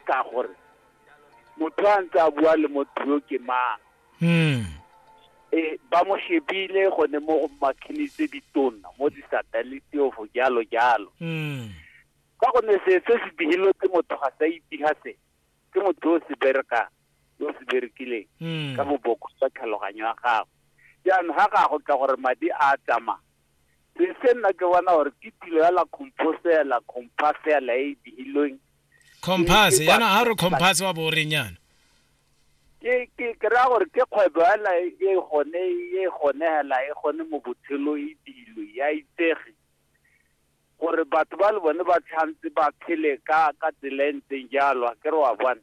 ka gore motho a ntse a bua le motho yo ke mang mm. e ba mo shebile gone mo go makhini tse ditona mo disateliti ofo jalo jalo mm. ka gonne se se se digilwe ke motho ga sa itiga se ke motho o se bereka yo se berekileng mm. ka boboko sa tlhaloganyo ya gago jaanong ga ga go tla gore madi a tsamaya se se nna ke bona gore ke tilo ya la composela compasela e e digilweng compass Ke- ke- yana ha re compass wa bo reng yana ke ke ke ra gore ke kgwebo yana e e gone e gone hela e gone mo botshelo e dilo ya itsege gore batho ba le bone ba tshwanetse ba phele ka ka tsela e ntseng jalo a ke re wa bona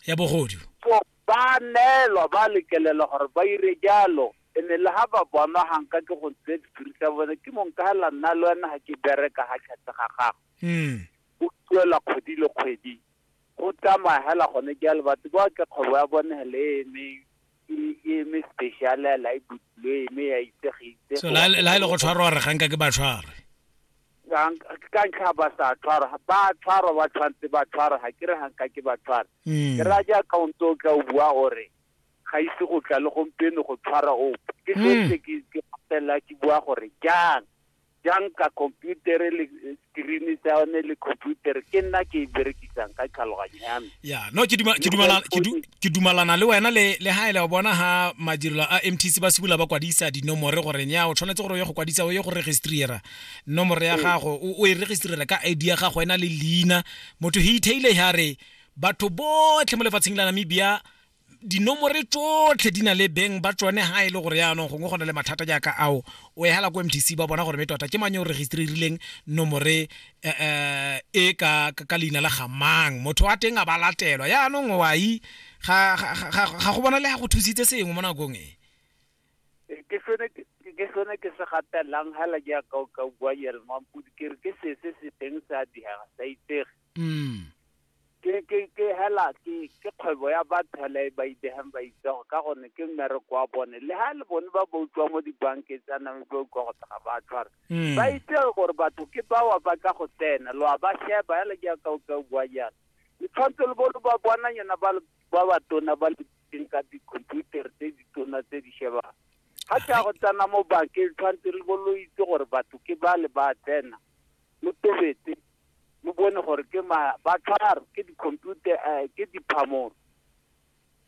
ya bogodu so ba neelwa ba lekelela gore ba ire jalo ene le ga ba bonwa ganka ke go ntse sephiri sa bone ke mong ka hela nna le wena ga ke bereka ga tlhatse ga gago mm go duelwa kgwedi le kgwedi go tsamaya hela gone jalo batho ba ke kgwebo ya bone hele e eme e- e eme special hela e butlwe e eme ya itsegitse so la la e le go tshwarwa re ganka ke ba tshware ka ntlha ba sa tshwarwa ba tshwarwa ba tshwanetse ba tshwarwa ga ke re ganka ke ba tshwara Mm. ke raya jaaka o ntse o tla o bua gore ga ise go tla le gompieno go tshwara ope ke Mm. setse ke ke patela ke bua gore jang jang ka computer le screen sa yone le computer ke nna ke e berekisang ka tlhaloganyo ya me ya no ke duma ke dumala ke du- ke dumalana le wena le le ha ele wa bona ha madirelo a MTC ba sibula ba kwadisa dinomore gore nya o tshwanetse gore o ye go kwadisa o ye go registrera nomoro ya gago o o e registrera ka ID ya gago ena le leina motho he itaile ya re batho botlhe mo lefatsheng la Namibia dinomore tsotlhe di na le beng ba tsone ha e le gore yaanong gongwe go na le mathata jaaka ao o e hala ko mtc ba bona gore me tota ke mang yo registerileng nomore eh, eh, e ka, ka, ka leina la gamang motho wa teng a ba latelwa yaanong wai ga, ga, ga, ga go bona le ga go thusitse sengwe mo nakong e Eh, ke sone ke ke sone ke se gatelang hela jaaka o ka bua yere mampodi ke re ke se se se teng se a diega sa itsege mm ke ke ke hela ke ke kgwebo ya batho hela e ba idegang ba itsego ka gone ke mmereko wa bone le ga le bone ba ba utlwa mo dibankeng tsa name ba utlwa go tega ba tshwara Mm. ba itse gore batho ke bawa ba tla go tsena lo a ba sheba hela jaaka o ka bua jalo le tshwanetse le bo lo ba bona yona ba le- ba ba tona ba le teng ka dikhomputara tse di tona tse di shebang ga ke ya go tsena mo bankeng tshwanetse le bo lo itse gore batho ke ba le ba tsena lo tobetse o bone gore ke ma ba tlharo ke di-computer eh, ke diphamoro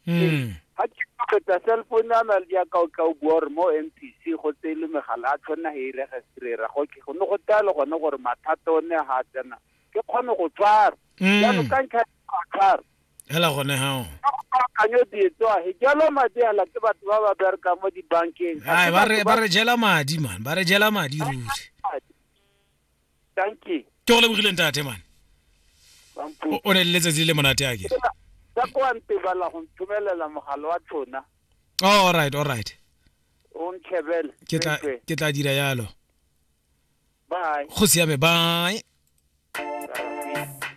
mm. ga ke feta cell phone ya na le yaka o tla o bua gore mo m p c go tse e le megala a tshwanna he e registrera go ne go talo gone gore mathata o ne ga a tsena ke kgone go tshwara mm. jalo ka ntlha a tshwara hela gone hao kanyo dietso a he jalo madi ala ke batho ba ba bereka mo dibankeng ba re jela madi man ba re jela madi ruri tanki ke go lebogile ntate mane bampo o o ne le letsatsi le monate a kere ka kwa ntebala go nthomelela mogala wa tona oh, all right all right o nthebele ke tla Tsweetswe. ke tla dira yalo bye go siame bye Bye.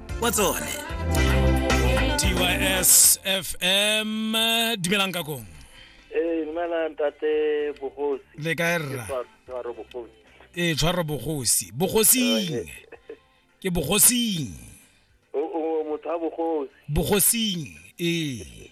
wa tsone tys fm dumelang ka kong ee dumela ntate bogosi le kae rra tshwaro bogosi ee tshwaro bogosi bogosing ke bogosing o o motho wa bogosi bogosing ee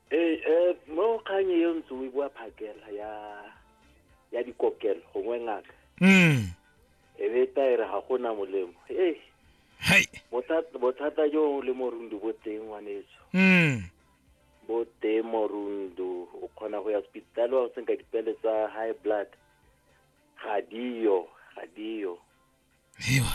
ee eh, mo kgang e ntse o e bua phakela ya ya dikokelo gongwe ngaka mm. e be taere ga go na molemo ee bothata jo le morundu bo teng ngwanetso mm. bo teng morundu o kgona go ya sepitale wa go senka dipele tsa high blood ga diyo ga diyo